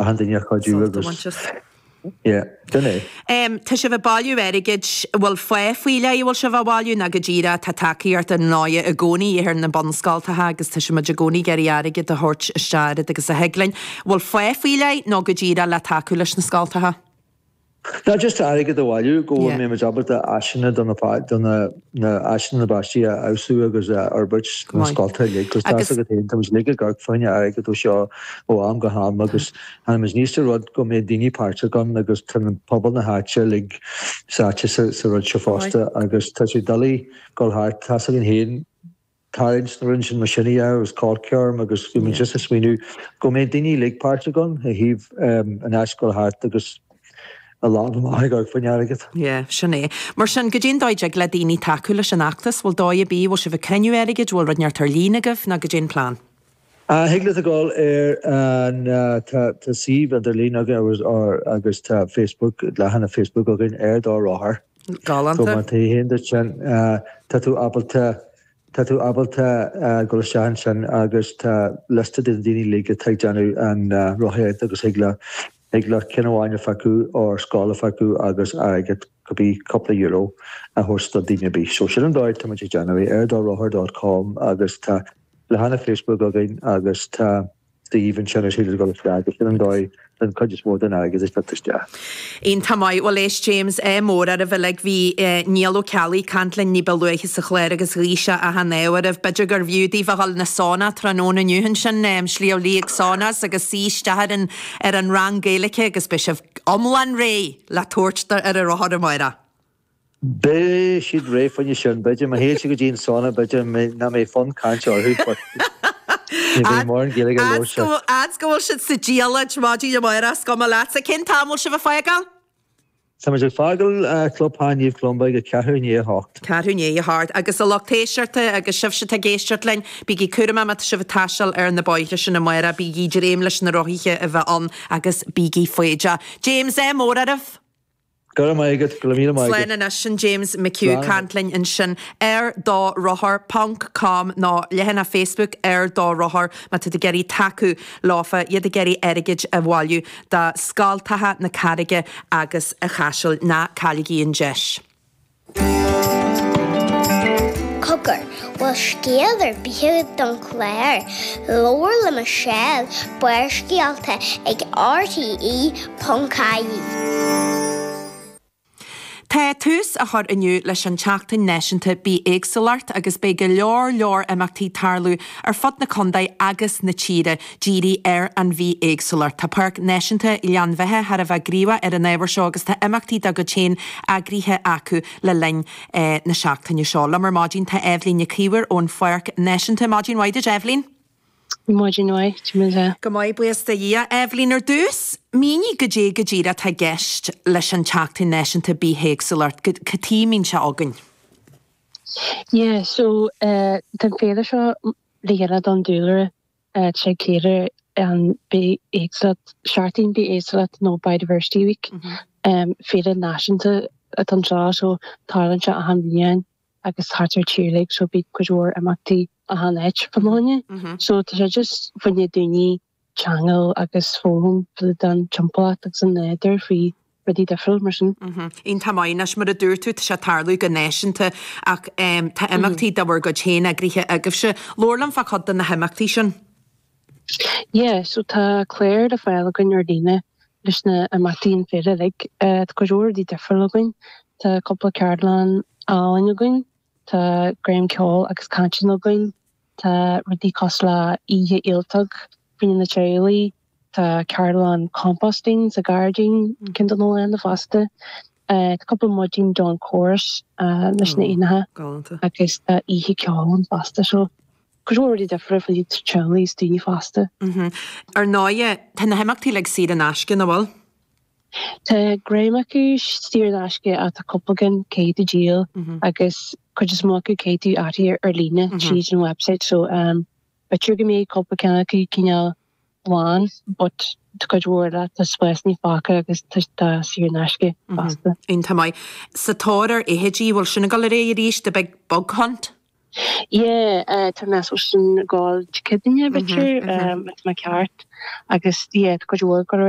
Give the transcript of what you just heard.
achan duine a chuidiú Sult a agus bhaint as. yeah sin é. Em, tá sibh ag bailiú airgid, bhfuil fáth faoi leith a bhfuil sibh á bhailiú nó go díreach, tá tacaíocht ar ndóighe i gcónaí a dhíth ar na bunscoltacha agus tá muid i gcónaí ag iarraidh airgead a thabhairt isteach oiread agus a thig linn, bhfuil fáth faoi leith nó go díreach le tacú leis na scoltacha? No, just airgead a bhailiú, go bhfuil muid ábalta áiseanna do na áiseanna na bpáistí a fheabhsú agus a fhorbairt sna scolta uilig. Agus tá's agat fhéin, tá muid uilig ag amharc faoi choinne airgead ó seo ó am go ham agus tháinig muid aníos le rud go mbeidh daoine páirteach ann agus tá pobal na háite uilig sáite sa rud seo fosta agus tá sé doiligh dul thart, tá's againn fhéin. Tá instruint in mo siní air agus corc orm agus bhí muid just ag smaoineamh go mbeidh daoine uilig páirteach ann, a thaobh in áit gabháil thart agus a lámh amach ag amharc faoi choinne airgead. Yeah, sin é. Mar sin, caidé an dóigh a dtig le daoine tacú leis an fheachtas, bhfuil dóigh ar bith, bhfuil sibh ag cruinniú airgid, bhfuil rud inteacht ar líne agaibh, nó caidé an plean? Ah, thig leat a ghabháil ar an, tá suíomh idirlín againn agus tá Facebook, leathanach Facebook againn ar do rothar. Má théann tú go dtí sin, tá tú ábalta, tá tú ábalta dul isteach ansin agus tá liosta de na daoine uilig atá ag déanamh an rothaíocht agus thig leat, thig leat ceann amháin a phiocadh or scoil a phiocadh agus airgead, cibé cúpla euro a thabhairt do dhuine ar bith. So sin an dóigh atá muid ag déanamh é, ar do rothar dot com agus tá leathanach Facebook againn agus tá. suíomh ansin ar Shíle de Gaulle Sraith agus sin an dóigh a thagann cuid is mó den airgead a thit isteach. Iontach maith, bhuel éist James, ádh mór oraibh uilig, bhí eh Niall Ó Ceallaigh ag caint linn níba luaithe sa chlár agus ghuigh sé achan ádh oraibh, b'fhéidir gurbh fhiú daoibh a dhul chun an sauna tráthnóna inniu ansin em Sliabh Liag Saunas agus suí isteach ar an ar an rang Gaeilice agus beidh sibh iomlán réidh le tabhairt do ar an rothar amárach. Beidh siad réidh faoi choinne sin, b'fhéidir. Má théann siad go dtí an sauna, b'fhéidir nach mbeidh fonn cainte orthu, but ní bheidh mórán Gaeilge leo. A fhad is go bhfuil siad sa diallait, maidin amárach, is cuma leatsa cén t-am a bhfuil sibh ag fágáil? Tá muid ag fágáil Clubtheach Naomh Columba ag a ceathrú i ndiaidh a hocht. Ceathrú i ndiaidh a hocht. Agus a lucht éisteachta, agus sibhse atá ag éisteacht linn, bígí cúramach má tá sibh ag taisteal ar na bóithre sin amárach, bígí ag dréim leis na rothaithe a bheith ann, agus bígí foighdeach. James, ádh mór oraibh! Go raibh maith agat, go raibh míle maith agat. Slán anois, sin James McHugh ag caint linn ansin ar do rothar ponc com nó leathanach Facebook Ar Do Rothar má tá tú ag iarraidh tacú leofa, iad ag iarraidh airgid a bhailiú do scoltacha na Carraige agus an Chaisil. Ná cailligí an deis! Cogar, bhfuil scéal ar bith agat don chlár, Labhair le Michelle, Barrscéalta ag RTE.ie. Tá tús á chur inniu leis an tSeachtain Náisiúnta Bithéagsúlachta agus beidh go leor leor imeachtaí ag tarlú ar fud na condae agus na tíre díriú ar an bhithéagsúlacht. Tá Páirc Náisiúnta Ghleann Bheithe thar a bheith gníomhach ar an ábhar seo agus tá imeachtaí dá gcuid féin eagraithe acu le linn na seachtaine seo. Liom ar maidin tá Eibhlín Nic Íomhair ón Pháirc Náisiúnta. Maidin mhaith duit, Eibhlín. Maidin mhaith, cad é mar atá tú. Go maith, buíochas le Dia. Eibhlín, ar dtús, mínigh goidé go díreach atá i gceist leis an tSeachtain Náisiúnta Bithéagsúlachta. Cad chuige muid seo againn? Yeah, so, tá an féile seo le dhéanamh don dúlra ag ceiliúradh an bith-éagsúlacht, seachtain bith-éagsúlacht nó Biodiversity Week, féile náisiúnta atá anseo so tarlaíonn sé achan bhliain agus thart ar tír like so bíonn cuid mhór imeachtaí achan áit fá choinne é so tá sé just fá choinne daoine a cheangal agus foghlaim faoi dtaobh den an timpeallacht agus an nádúr fríd rudaí difriúla mar sin. Iontach maith anois mar a dúirt tú, tá sé ag tarlú go náisiúnta ach tá imeachtaí de bhur gcuid féin eagraithe agaibhse. Labhair liom fá chuid de na himeachtaí sin. Yeah, so tá clár le fáil againn ar líne leis na himeachtaí an féile uilig. Tá go leor rudaí difriúla againn, tá cúpla ceardlann álainn againn, tá dréim ceoil agus cainte againn, Tá rudaí cosúil le oíche ialtóg fá choinne na teaghlaigh, tá ceardlann composting sa ghairdín ceann don olann fosta, tá cúpla maidin dawn chorus leis na éanacha agus tá oíche ceoil ann fosta. So go leor rudaí difriúla fá choinne teaghlaigh is daoine fásta. Ar ndóigh, tá na himeachtaí uilig saor in aisce, nach bhfuil? Tá an dream acu saor in aisce ach tá cúpla ceann caithfidh tú díol agus cuid is mó acu caithfidh tú áit a fháil ar líne tríd an website so b'fhéidir go mbeidh cúpla ceann acu cineál lán but tá cuid mhór eile tá spásannaí fágtha agus tá saor in aisce fosta. Iontach maith. Sa tóir ar fheithidí, bhfuil sin ag dul ar aghaidh arís, the big bug hunt? Yeah tá mé ag déanamh sin ag dul Dé Céadaoin b'fhéidir má tá mé ceart agus yeah tá cuid mhór ag dul ar aghaidh.